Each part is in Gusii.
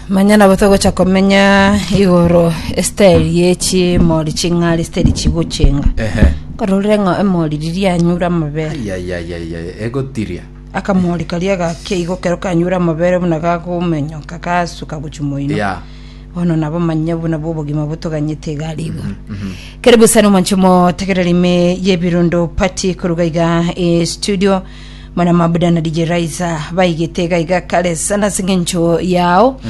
manya nabo togocha komenya igoro esiteri yechimori ching'ari esiteri chigochenga ehe kororire ng'a emori riria anyure amabere ayayayayaya egotiria akamori karia gakia igo kero kanyure amabere buna gakomenyoka gasuka gochia moino ya bono nabo manya buna bwo obogima botoganyete iga ari igoro karibu sana omonche motegereri ime yebirundo pati koruga iga e studio Mana mabuda na DJ Raiza baigete iga iga kare sana ase eng'encho yao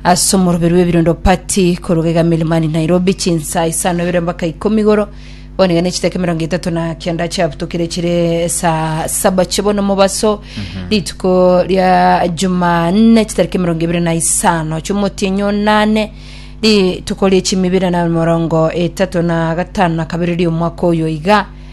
ase omoroberi w'ebirondo pati koruga iga Milimani Nairobi chinsa isano ibere mpaka ikomi igoro bono iga nechitaka emerongo etato na kianda chiabutokire chire saa saba chibono mobaso rituko ria Jumanne chitariki emerongo ibere na isano chiomotienyo nane rituko rie chimibere na emerongo etato na gatano na kabere ria omwaka oyo iga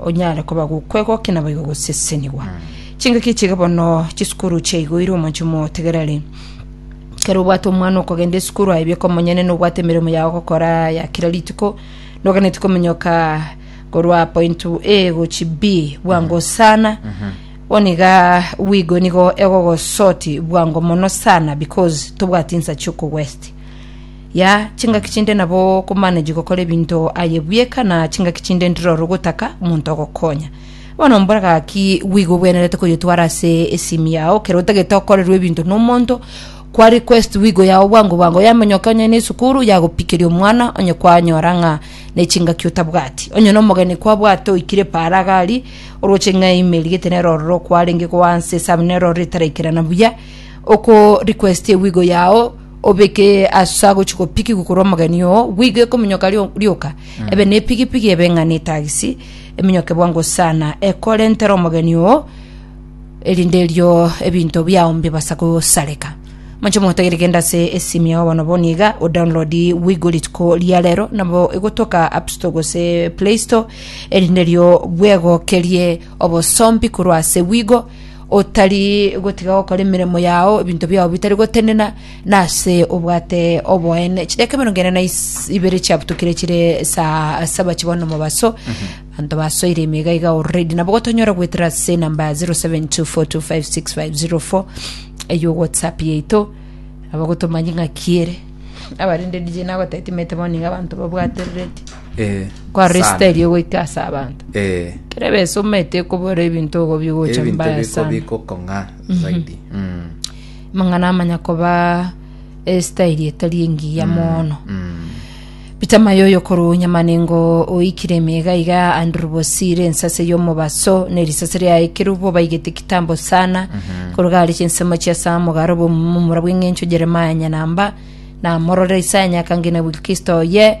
onyare koba gokwegokia naboigo gosesenigwa chingaki chiga bono chisukuru chiaigoire omonche motegereri kere obwate omwana okogenda esukuru aye bieka omonyene nobwate emeremo yao gokora ya kira rituko noganeti komenyoka korwa point a gochi b bwango sana oniga wigo nigo egogosoti bwango mono sana because tobwati nsa chiokogwesti Ya chingaki chinde nabo okomanage gokora ebinto aye bweka na chingaki chinde ntiroro ogotaka omonto ogokonya. Bono mbora gaki gwiga obwenerete koyotwara ase esimi yao kero otagete okorerwa ebinto nomonto kwa request wigo yao bwango bwango yamonyoka onye ne esukuru yagopikeria omwana onye kwanyora ng'a ne chingaki otabwati onye na omogeni kwabwate oikire paara gari oroche ng'a email gete nero ororo kwarenge goansa esamu nero ororo etaraikerana buya oko request ewigo yao obeke asa gochi gopikigwa korwa omogeni oo, bwigwe ekominyoka rio- rioka, ebe ne epigipigi ebe ng'a netagisi, eminyoke bwango sana, ekorentera omogeni oo, erinde erio ebinto biao mbibasa gosareka. Moche mogotagere genda ase esimu yao bono bono iga, odownload bwigwe rituko ria rero, nabo egotoka appstore gose playstore, erinde erio bwegokerie. Obosombi korwa ase bwigo, otari gotiga gokora emeremo yao, ebinto biao bitari gotenena, na ase obwate oboene. Chidaka emerongo ene na is- ibere chiabutukire chire saa saba chibao na omobaso, abanto basoire ime iga iga already. Nabo gotonyora goetera ase enamba 0724256504 eyio whatsapp yaito, nabo gotomanyie ng'aki ere. Abarende DJ nagotetimete bono nigo abanto babwate ready. Eh, Kwa sana. resita erio goika ase abanto. Eh, Kere besa omete okobora ebinto ogo bigocha ebinto mbaya biko sana. biko kong'a zaidi Mm, Mang'ana amanya koba esitairi etari engiya mono. mm. Peter Mayoyo korwa Nyamanengo oikire emega iga Andrew Bosire ensase y'omobaso ne risase ria ekerubo baigete kitambo sana koruga ari chinsemo chia Samu garo bomumura bw'eng'encho Jeremiah Nyanamba na morore Isaya Nyakangina Wilkisto ye